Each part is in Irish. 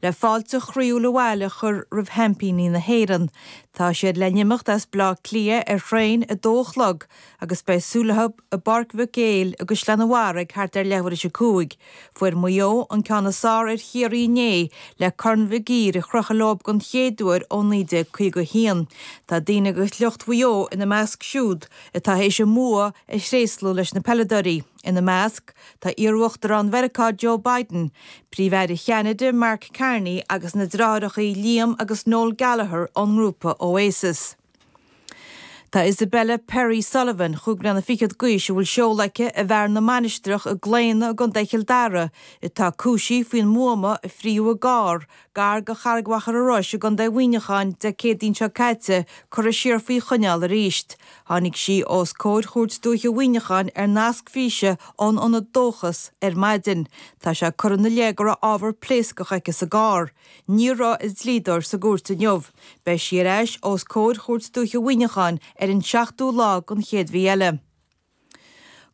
Le fáilte chroíúil abhaile a chur roimh sheaimpíní na hÉireann, tá siad le n-imeacht as Bleá Cliath ar thraein a dó a chlog agus beidh súil leo i bPáirc Mhic Éil i gCaisleán an Bharraigh thart ar leathuaire is a cúig. Fuair Maigh Eo an ceann is fearr ar Chiarraí inné le Corn Mhig Uidhir a chrochadh leo den chéad uair ó 1951. Tá daoine agus lucht Mhaigh Eo ina measc siúd atá théis a mbua a thréaslú leis na peileadóirí. Ina measc, tá iarUachtarán Mheiriceá Joe Biden, Príomh-Aire Cheanada Mark Carney agus na deartháireacha Liam agus Noel Gallagher ón ngrúpa Oasis. Tá Isabella Perry Sullivan, chúig bliana fichead d'aois a bhfuil seoladh aici i bhFearann na Mainistreach i gClaonadh i gContae Chill Dara, atá cúisithe faoin mbuama a frítheadh i gcarr Gar go Charraig Mhachaire Rois i gContae Mhuineacháin Dé Céadaoin seo caite curtha siar faoi choinneáil arís. Tháinig sí os comhair Chúirt Dúiche Mhuineacháin ar nasc físe ón ionad Dóchas ar maidin. Tá sé curtha ina leith go raibh ábhar pléascach aici sa gcarr. Ní raibh a dlíodóir sa gcúirt inniu. Beidh sí ar ais os comhair Chúirt Dúiche Mhuineacháin ar an seachtú lá den chéad mhí eile.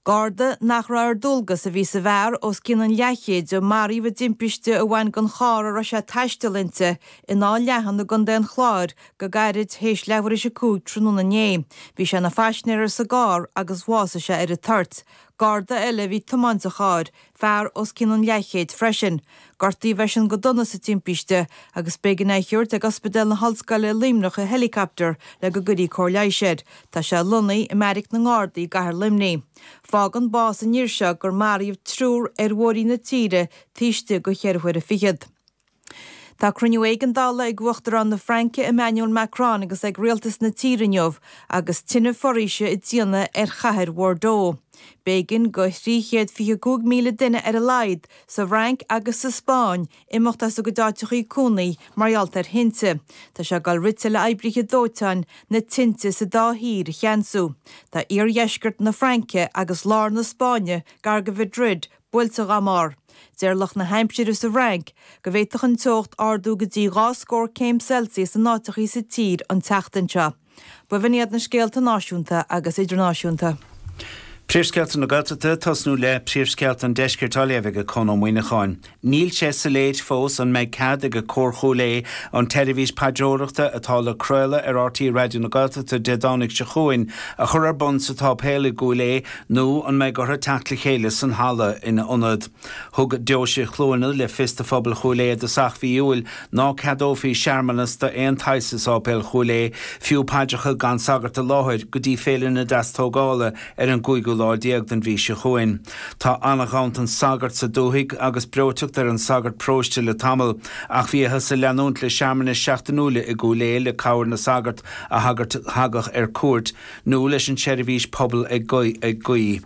Garda nach raibh ar dualgas a bhí sa bhfear os cionn an leathchéid a maraíodh i dtimpiste a bhain den charr a raibh sé ag taisteal inti in Áth Leathan i gContae an Chláir go gairid théis leathuair is a cúig tráthnóna inné. Bhí sé ina phaisinéir sa gcarr agus bhásaigh sé ar an toirt. Garda eile a bhí ag tiomáint an chairr, fear os cionn an leathchéid freisin. Gortaíodh eisean go dona sa timpiste agus b'éigean é a thabhairt ag Ospidéal na hOllscoile i Luimneach i helicapter le go gcuirí cóir leighis air. Tá sé lonnaithe i mbeairic na nGardaí i gcathair Luimnigh. Fágann bás an fhir seo gur maraíodh triúr ar bhóithre na tíre taobh istigh go cheithre huaire fichead. Tá cruinniú éigeandála ag Uachtarán na Fraince Emmanuel Macron agus ag rialtas na tíre inniu agus tine foraoise ag déanamh ar chathair Bhordeaux. B'éigean go thrí chéad fiche cúig míle duine ar a laghad sa bhFrainc agus sa Spáinn imeacht as a gcuid áiteachaí cónaí mar gheall ar thinte. Tá sé ag dul rite le oibrithe dóiteáin na tinte sa dá thír a cheansú. Tá iardheisceart na Fraince agus lár na Spáinne gar go Mhadrid, buailte go mór. Deir lucht na haimsire sa bhFrainc go bhféadfadh an teocht ardú go dtí dhá scór céim Celsius in áiteachaí sa tír an tseachtain seo. B'in iad na scéalta náisiúnta agus idirnáisiúnta. Príomhscéalta na Gaeltachta tosnú le príomhscéalta an Deiscirt á léamh ag Conn Ó Muimhneacháin. Níl sé soiléir fós an mbeidh cead ag Cór Chúil Aodh an tseirbhís paidreoireachta atá le craoladh ar RTÉ Raidió na Gaeltachta Dé Domhnaigh seo chugainn a chur ar bun sa tSáipéal i gCúil Aodh Nó an mbeidh orthu teacht le chéile san halla ina ionad? Thug Deoise Chluana le fios do phobal Chúil Aodha i dtosach mhí Iúil ná ceadófaí searmanas d'aon tsaghas i Sáipéal Chúil Aodha, fiú paidreacha gan sagart i láthair, go dtí Féile na Deastógála ar an gcúigiú lá déag den mhí seo chugainn. Tá an-ghanntan sagart sa dúthaigh agus breoiteacht ar an sagart paróiste le tamall ach bhíothas ag leanúint le searmanais seachtainiúla i gCúil Aodha le cabhair na sagart a thagadh ar cuairt nó leis an tseirbhís pobail ag guí.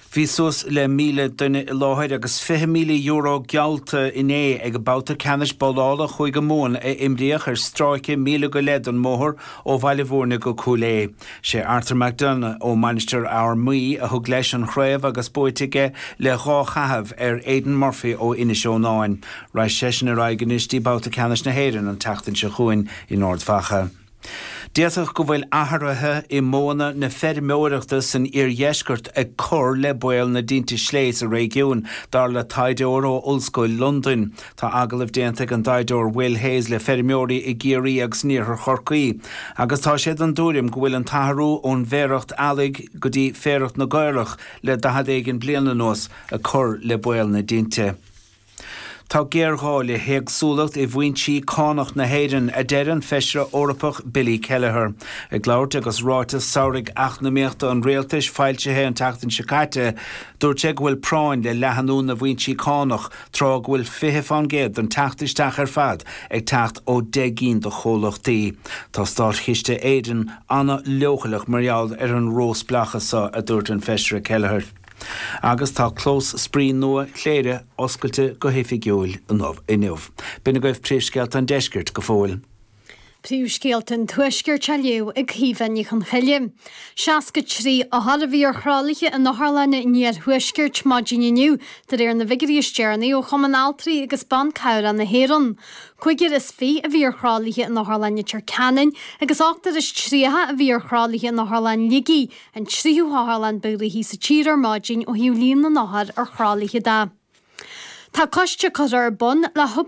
Bhí suas le 1,000 duine i láthair agus €20,000 geallta inné ag an babhta ceannais babhlála Chúige Mumhan a imríodh ar stráice míle go leith den mbóthar ó Bhaile Bhúirne go Cúil Aodha. Sé Arthur McDonagh ó Mainistir Fhear Maí a thug leis an chraobh agus buaite aige le dhá chaitheamh ar Aidan Murphy ó Inis Eonáin. Raghaidh seisean ar aghaidh anois dtí babhta ceannais na hÉireann an tseachtain seo chugainn in Ard Mhacha. D'fhéadfadh go bhfuil athruithe i modhanna na feirmeoireachta san iardheisceart ag cur le baol na dtinte sléibhe sa réigiún, dar le taighdeoir ó Ollscoil Londain. Tá agallamh déanta ag an dtaighdeoir Will Hayes le feirmeoirí i gCiarraí agus in iarthar Chorcaí agus tá sé den tuairim go bhfuil an t-athrú ón bhféarach eallaigh go dtí féarach na gcaorach le daichead éigin bliain anuas ag cur le baol na dtinte. Tá géarghá le héagsúlacht i bhfoinsí cánach na hÉireann, a deir an Feisire Eorpach Billy Kelleher. Ag labhairt agus ráiteas samhraidh eacnamaíochta an rialtais foilsithe an tseachtain seo caite, dúirt sé go bhfuil práinn le leathnú na bhfoinsí cánach tráth go bhfuil 20 fán gcéad den teacht isteach ar fad ag teacht ó 10 gcinn de chomhlachtaí. Tá Státchiste Éireann an-leochaileach mar gheall ar an ró-spleáchas seo, a dúirt an Feisire Kelleher. Agus tá clós spraoi nua Chléire oscailte go hoifigiúil inniu. B'in agaibh príomhscéalta an deiscirt go fóill. Príomhscéalta an tuaiscirt á léamh ag Caoimhe Ní Chonchoille. 63 othar a bhí ar thralaithe in otharlanna an iarthuaiscirt maidin inniu de réir na bhfigiuirí is deireanaí ó Chumann Altraí agus Ban Cabhrach na hÉireann. Cúigear is fiche a bhí ar thralaithe in Otharlann Leitir Ceanainn agus ochtar is tríocha a bhí ar thralaithe in Otharlann Shligigh an tríú hotharlann ba ghnoithí sa tír ar maidin ó thaobh líon na n-othar ar thralaithe de. Tá coiste curtha ar bun le hobair